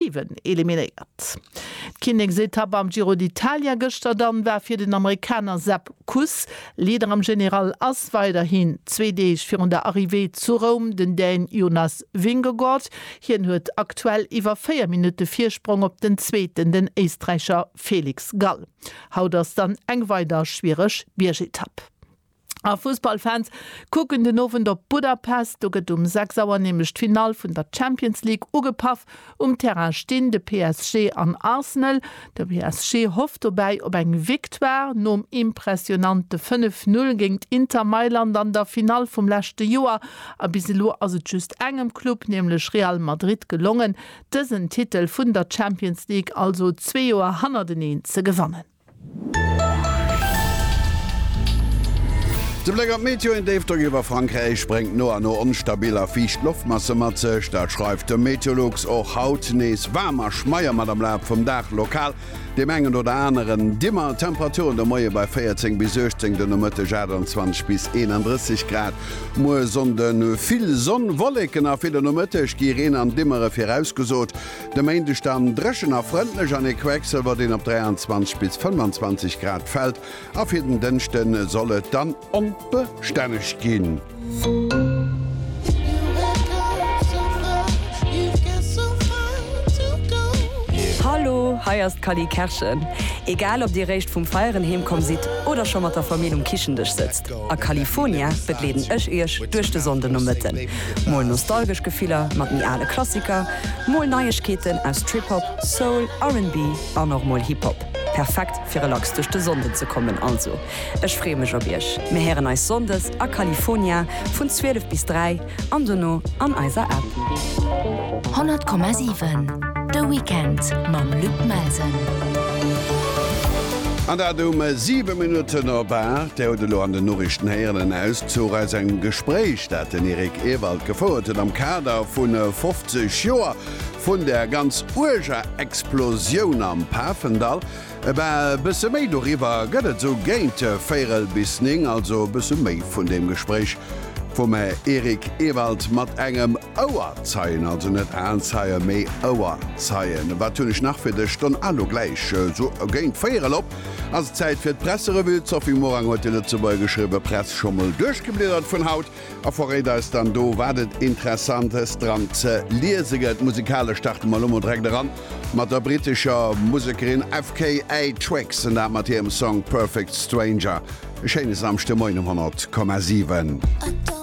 Even eliminéiert. D'Kinneksetapp am Giro d'Italia gëschter dann war fir den Amerikaner Sepp Kuss. Leader am General ass weiderhin, zwee Deeg virun der Arrivée zu Roum, den Dän Jonas Vingegaard. Hien huet aktuell iwwer 4 Minutte Virsprong op den Zweeten, den Éisträicher Felix Gall. Haut ass dann eng weider schwiereg Biergetapp. A Fussballfans kucken den Owend op Budapest. Do gëtt um 6 Auer nämlech d'Finall vun der Champions League ugepaff. Um Terrain stinn de PSG an Arsenal. De PSG hofft dobäi op eng Victoire. Nom impressionante 5, 0 géingt Inter Mailand an der Finall vum leschte Joer a bis elo ass et just engem Club, nämlech Real Madrid gelongen, dësen Titel vun der Champions League also zwee Joer hannerteneen ze gewannen. De Bléck an d'Meteo, Een Déifdrock iwwer Frankräich bréngt no a no onstabil a fiicht Loftmasse mat sech. Dat schreift de Meteolux. Och haut nees waarm a schmeier mat am Laf vum Dag lokal deem engen oder aneren Dimmer. Temperaturen de Moie bei 14 bis 18, de Nomëtteg 28 bis 31 Grad. Muer Sonnde vill Sonn, Wolleken a ville Nomëtteg, gi Reen an Dimmere virausgesot. De Méindeg dann dréchen a frëndlech an ee Quecksilwer, deen op 23 bis 25 Grad fält a fir den Dënschde soll et dann onbestänneg ginn. Hallo, hei ass d'Cally Kerschen. Egal ob dir réischt vum Feieren heemkomm sidd oder scho mat der Famill um Kichen-Dësch sëtzt, A California begleeden ech iech duerch de Sonndenomëtten. Mol nostalgesch Gefiller mat méi ale Klassiker, mol Neiegkeeten aus Trip-Hop, Soul, RnB an och mol Hip-Hop. Perfekt fir relax duerch de Sonnden ze kommen. Also ech freeë mech op iech. Mir héieren eis Sonndes a California vun 12 bis 3. an dono an eiser App. 100,7 De Weekend mam Luc Melsen. An dat um 7 Minutten op 8. Dir hutt elo an den Noriichten héieren en Auszuch aus engem Gespréich, dat den Eric Ewald gefouert huet am Kader vu 50 Joer vun der ganz uerger Explosioun am Pafendall. E bësse méi doriwwer gëtt et esou géint véirel bis néng, also e bësse méi vun deem Gespréich vum Här Eric Ewald mat engem Ouerzeien, also net Aenzeien, mee Ouerzeien. Wat hunn ech nach fir dech? Stonn a lo gläich esou géint véirel op ass et Zäit fir d'Presserevue. D'Sophie Morang huet de Lëtzebuerger geschriwwe, Press scho mol duerchgebliedert vun haut. A verréit eis dann do wat et Interessantes dran ze liese gëtt. Musikalesch starte mer lo mol direkt eran mat der brittescher Musekerin FKA Twigs an dat mat hirem Song Perfect Stranger. E schéine Samschdemoien um 100,7.